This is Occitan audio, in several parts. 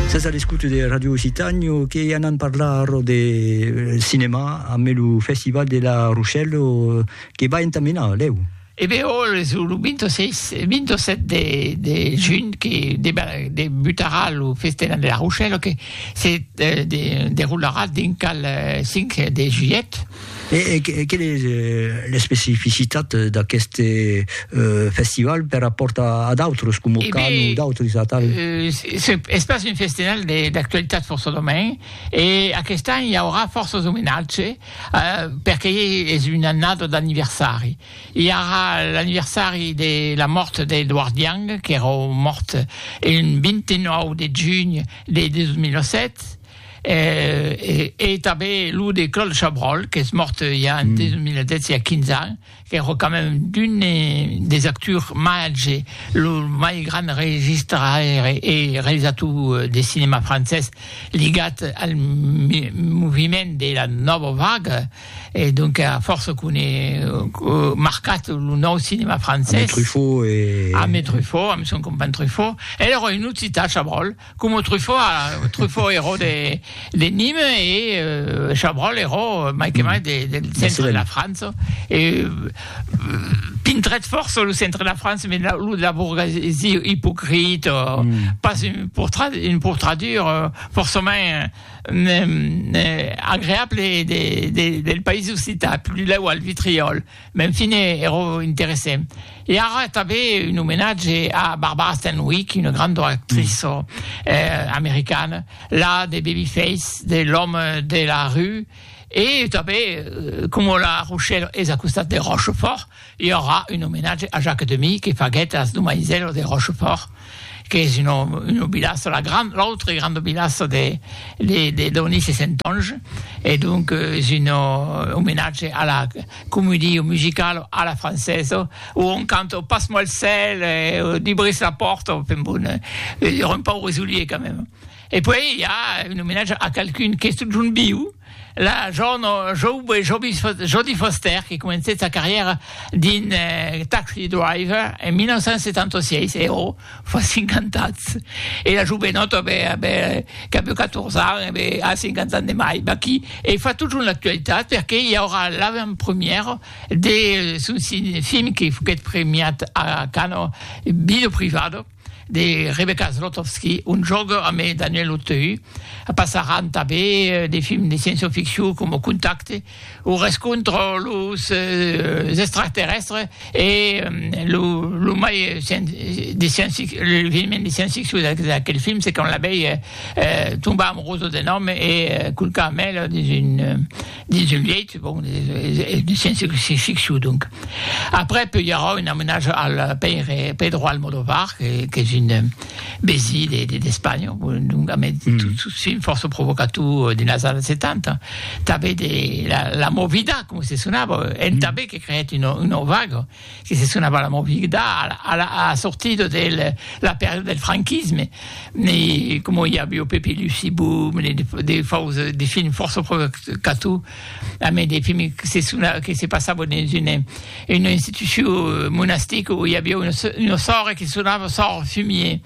Sas a l'escouta de Radio Occitània que anam parlar de cinema amb lo festival de la Rochelle que va entamenar lèu. E ben ò, es lo 26, 27 de, de junh que debutarà lo festival de la Rochelle que se deroularà dinc al 5 de julhet. E quelle es l'especificitat d'aqueste festival per rapòrt a d'autres, coma Cannes o d'autres atau? Es pas un festival d'actualitat fòrça domain, e aquest an i aurà fòrças omenatge, perque es una annada d'anniversari. I aurà l'anniversari de la mòrt d'Edward Young, qu'èra mòrt un 29 de junh de 2007, E tanben lo de Claude Chabrol, qu'es mòrt ja en 2010, ja 15 ans, qu'èra quand même d'un des actors màger, lo mai grand registraire e realizator de cinèma francés ligat al moviment de la Nòva Vaga, e donc a fòrça qu'un e marcat lo nòu cinèma francés. Ame Truffaut e. Ame Truffaut, ame son companh Truffaut. El èra un occitan, Chabrol. Coma Truffaut, Truffaut ero de de Nîmes e Chabrol ero mai que mai de de centre de la França e pintrètz fòrça lo centre de la França me lo de la bourgesie ipocrite pas un portrait un portrature fòrçament agreable de de del país occitan, plus lèu al Vitriòl. M'en fine ero interesse. E ara tanben un omenatge a Barbara Stanwyck, una granda actriça americana, la de Babyface, de L'homme de la rue, e tanben coma la Rochèla es a costat de Rochefòrt, i aurà un omenatge a Jacques Demy que faguèt As domaisèlas de Rochefòrt. qu'es una una vilassa, la gran, l'autre grande vilassa de de de Donis e Sentonge e donc es un omenatge a la comédie musicale à la française où on cante passe-moi le sel, dubris la porte, enfin bon, un pauvre soulier quand même. E puèi i a un omenatge a qualqu'un qu'es totjorn viu, la jorna jove Jodie Foster, que comencèt sa carrièra dins Taxi Driver en 1976, e ò, fa 50 ans. E la jovenòta, qu'a bèu 14 ans, e a 50 ans de mai, ma qui e fa totjorn l'actualitat perque i aurà l'avantpremièra de son film que foguèt premiat a Cannes, Bido Privado, de Rebecca Zlotowski, un jòc amb Daniel Auteuil, passaràn tanben de films de sciençioficcion coma Contacte o Rescontre los extraterrèstres e lo mai de l'eveniment de sciençficcion d'aquel film se quand l'abelha tomba amorosa d'un òme e culca amb el dins un dins un lièit, bon, sense que se fixu, donc. Après peu i aurà un amenatge al pèire Pedro Almodóvar, qu'es un besí d'Espanha, donc amé tot fin fòrça provocator dins las annadas 70, tanben de la Movida, coma se sonava, en tanben que creèt una vaga, que se sonava la movida a la sortida de la pèrda del franquisme, e coma i aviá Pepe e Lucie Boom, de fòus, de films fòrça provocators, a mei de films que se sonavan, que se passavan dins una institucion monastica oi aviá una sòrre que sonava sòrre fumier,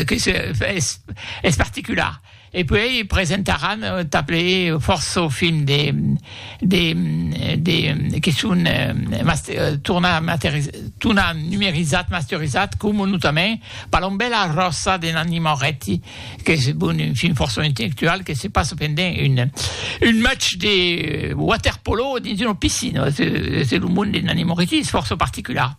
que es particular. E puèi presentaràn tanples fòrça films de de de que son tornat numerizats, masterizats, coma notament Palombèla ròsa de Nanni Moretti, qu'es bon un film fòrça intellectual que se passa pendent un un match de waterpolo dins una piscina, es es lo monde de Nanni Moretti es fòrça particular.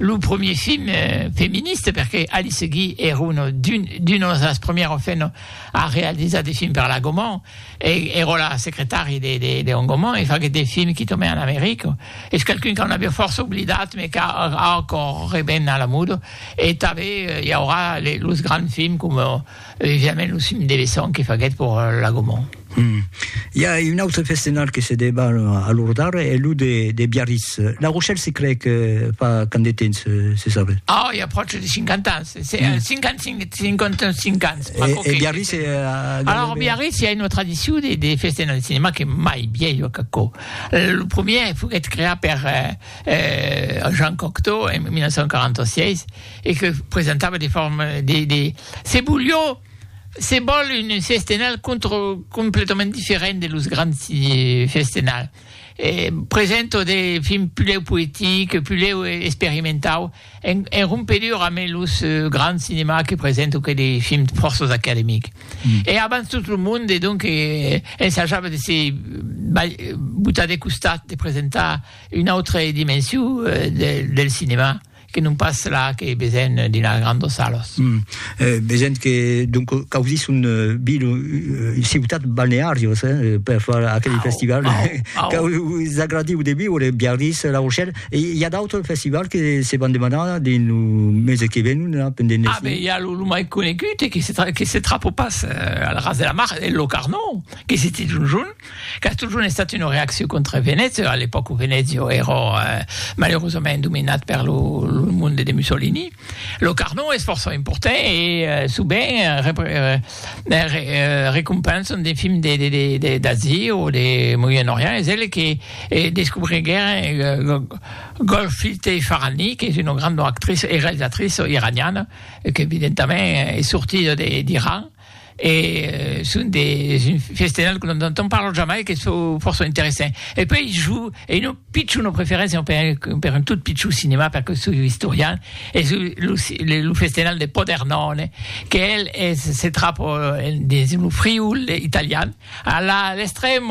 lo premier film feministe, perque Alice Guy er un d'unos das premières femnes a realizar de films per la Gaumont, e era la secretari de Léon Gaumont, e faguèt de films qui tomè en America, es qualqu'un qu'an aviá fòrça oblidat, mais qu'a ancòr reben a la moda, e tanben i aurà los grands films coma Evidentment lo cim de Besson que faguèt pour la Gaumont. Hum. I a un autre festenal que se debat a Lourdard, es lo de, de Biarritz. La Rochelle se cree que fa quand de temps, se sabe? Oh, i a pròche de 50 ans, se, mm. 55, 55 ans. E, e Biarritz... E, Alors, Biarritz, i a una tradicion de, de festenal de cinema que mai vieille a Cacó. Lo premier foguèt creat per eh, eh, Jean Cocteau en 1946 e que presentava de formes, de, de, Se Bullió se vòl un festenal completament diferent de los grands festenal, present o de fin pulèu poetic, pulèu experimentau, en rompedura amé los grands cinemas que present o que de fin fòrços academic. E abans tot lo monde donc ensajava de se botar de costat, de presentar una autre dimensiu del cinema. Que non pas la que vesen dina grandos salos. Vesen que donc causís un vil ciutat balnearios per far aquel festival. Qu'aus agradiu de viure Biarritz, La Rochelle. E i a d'autres festivals que se van demanar dins lo mese que ven la pendent Ah ben i a lo mai conegut e que se trapo pas al ras de la mar, lo Carnot, que se titz un jorn. Qu'a totjorn estat una reaccion contra Venècia, a l'epòca Venècia èra malerosament dominat per lo monde de Mussolini. Lo Carnot es fòrça important e sovent recompensan de films d'Asia o de Moyen Orient. Es el que descobriguèron Golshifteh Farahani, qu'es una granda actriça e realizatriça iraniana, qu'evidentament es sortida d'Iran. E son de festejar que non te'n parlo jamai, que çò fòrça interessant. E puèi jo ei un pichon o preferéncia per un tot pichon cinema, perque soi historian, e soi lo festejar de Podernòne, que el se trapa dins lo Friül italian, a l'estrèm.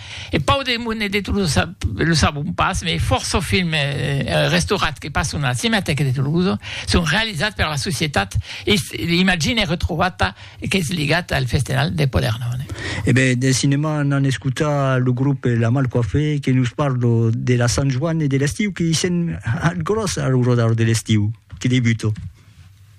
Eth pau de Monet de Tolosa lo sabon pas, mès fòrça films restaurats que passon a la Cinematèca de Tolosa son realizats per la societat Imagine Retrovata qu'es ligat al Festenal de Podernòne. E ben, de cinèma anam escotar lo grop La Mal Coiffée que nos parla de la Sant Joan e de l'estiu que i sent ath gròs ath rodar de l'estiu que debuta.